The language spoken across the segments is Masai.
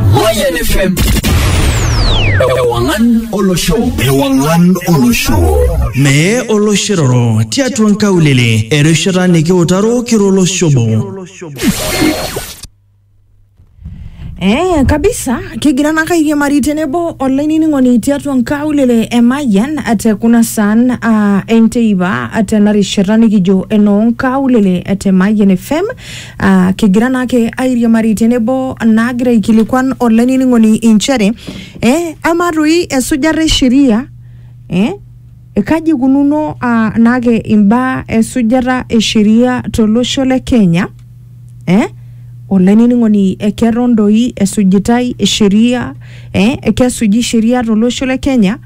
Mayan FM. Ewangan Olosho. Ewangan Olosho. Mee oloshiroro tiatua nkaulele erishata nikiutaro kiro oloshobo. Eh, kabisa kigira naka airiamari tenebo olainining'oni tiatua nkaulele e Mayian te kuna saan uh, enteipa tena rishata nikijo enoo nkaulele te Mayian FM Ah, kigira naake airiamari tenebo naagira aikilikuan olainining'oni inchere eh, ama toi esujata e sheria eh, kaji ikununo ah, naake imbaa esujata e sheria tolosho le Kenya eh, olainining'oni eh, keton doi esujitai sheria eh, kesuji sheria tolosho le Kenya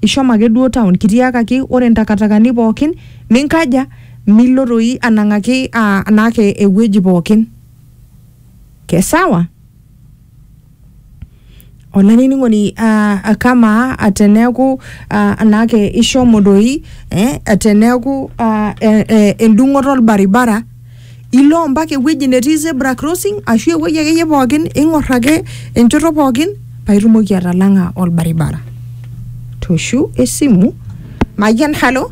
ishomo ake duo town kitiakaki ore ntakatakani pookin ninkaja Milo doi anang'aki aa anaake ewueji pookin. Kesawa? Olainining'oni aa kamaa teneeku aa anaake ishomo doi eh teneeku aa endung'oto olbaribara ilo mpaka ewueji netii zebra crossing ashu ewueji akeyie pookin ing'orr ake enchoto pookin paitumoki atalang'a olbaribara. Tooshu esimu. Mayian, halo?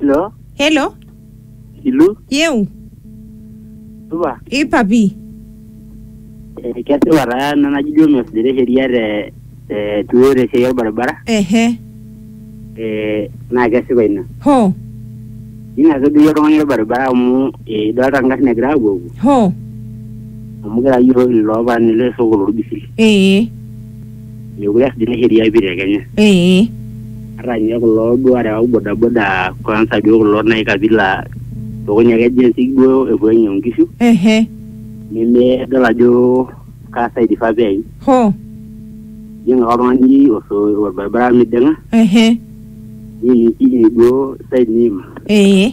Hello, helo Ilu, yeu supa. i papi Eh, Kesipa taa ena naji duo mesujita sheria te te tuo te siai orbaribara ehe eh, naa kesipa ina. ho Ina sii duo oltung'ani orbaribara amu eh, idolta ngarrin egira apuopuo ho amu kira yiok iloopaani le soko lorbisil. ee Mekure eas dina sheria pi te Kenya. Ee. Ata nye kulo duo arewak bodaboda kwanza duo kulo nai kabila lukuny ake jinsi duo epuo ainyang'u nkishu, Ehe. nemedol ajo kaa side ifaa peim. Hoo. Ijing' ake oltung'ani oso- orbaribara miding'a, Ehe. niimikini duo side niima. Ee.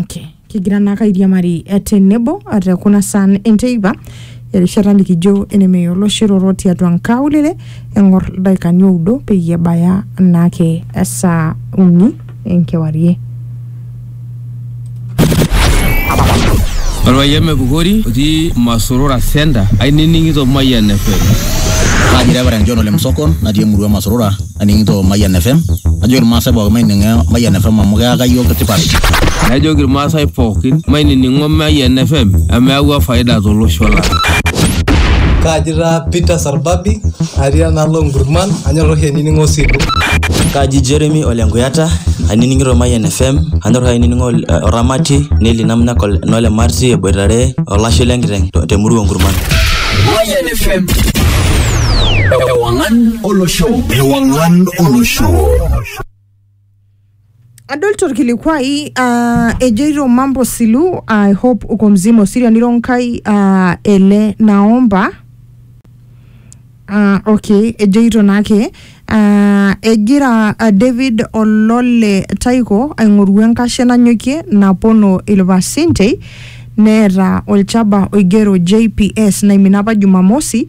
Okay. kigira naake airiamari eh, tenebo eh, te kuna saan enteipa erishata nikijo enemeya oloshiroro tiatua nkaulele eng'or ildaikani oudo peyie ebaya naake esaa uni enkewarie Orpayian Mepukori otii Masorora Center ainining'ito Mayian FM. Kaji Reverend John Ole Msokon natii emurua Masorora aning'ito Mayian FM. Najoki irmaasai pookin maining'o Mayian FM amu keyaka iyiook tipat. Najoki irmaasai pookin mainining'o Mayian FM amu eyawua faida tolosho lang'. Kaji taa Peter Arbabi, atii enaalo Nkurman, anyor oshi ainining'o Osilu. Kaji Jeremy ole Nkuyata, ainining'ito Mayian FM, anyor oshi ainining'o Oramati, Nelly Namnak nole Marti eboitare olashe le nkiteng te murua Nkurman. Mayian FM. Ewangan Olosho. Ewangan Olosho. Adol torkilikuai ah, ejoito mambo silu I hope uko mzima osiria niro nkai ah, ele naomba Ah, okay ejoito naake ah, egira ah, David Olole Taiko aing'oru enkashe nanyokie napono ilpasentei neeta olchaba oigero JPS naimina apa Jumamosi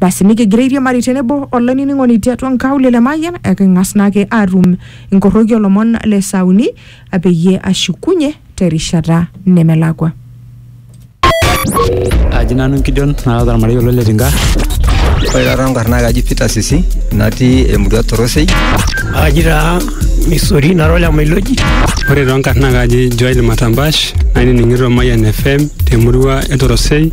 Basi nikigira airiamari tenebo olainining'oni tiatua nkaulele Mayian eking'as naake aatum inkorroki olomon le saa uni peyie ashukunye terishata nemelakua. Aji nanu Gideon naata ormarei olo le Tinga. Ore taata nkarn naa kaji Peter Sisi natii emurua Torosei. Aji taa Misori nara ole Mailoji. Ore too nkarn naa kaji Joel Matambash nainining'ito Mayian FM temurua e Torosei.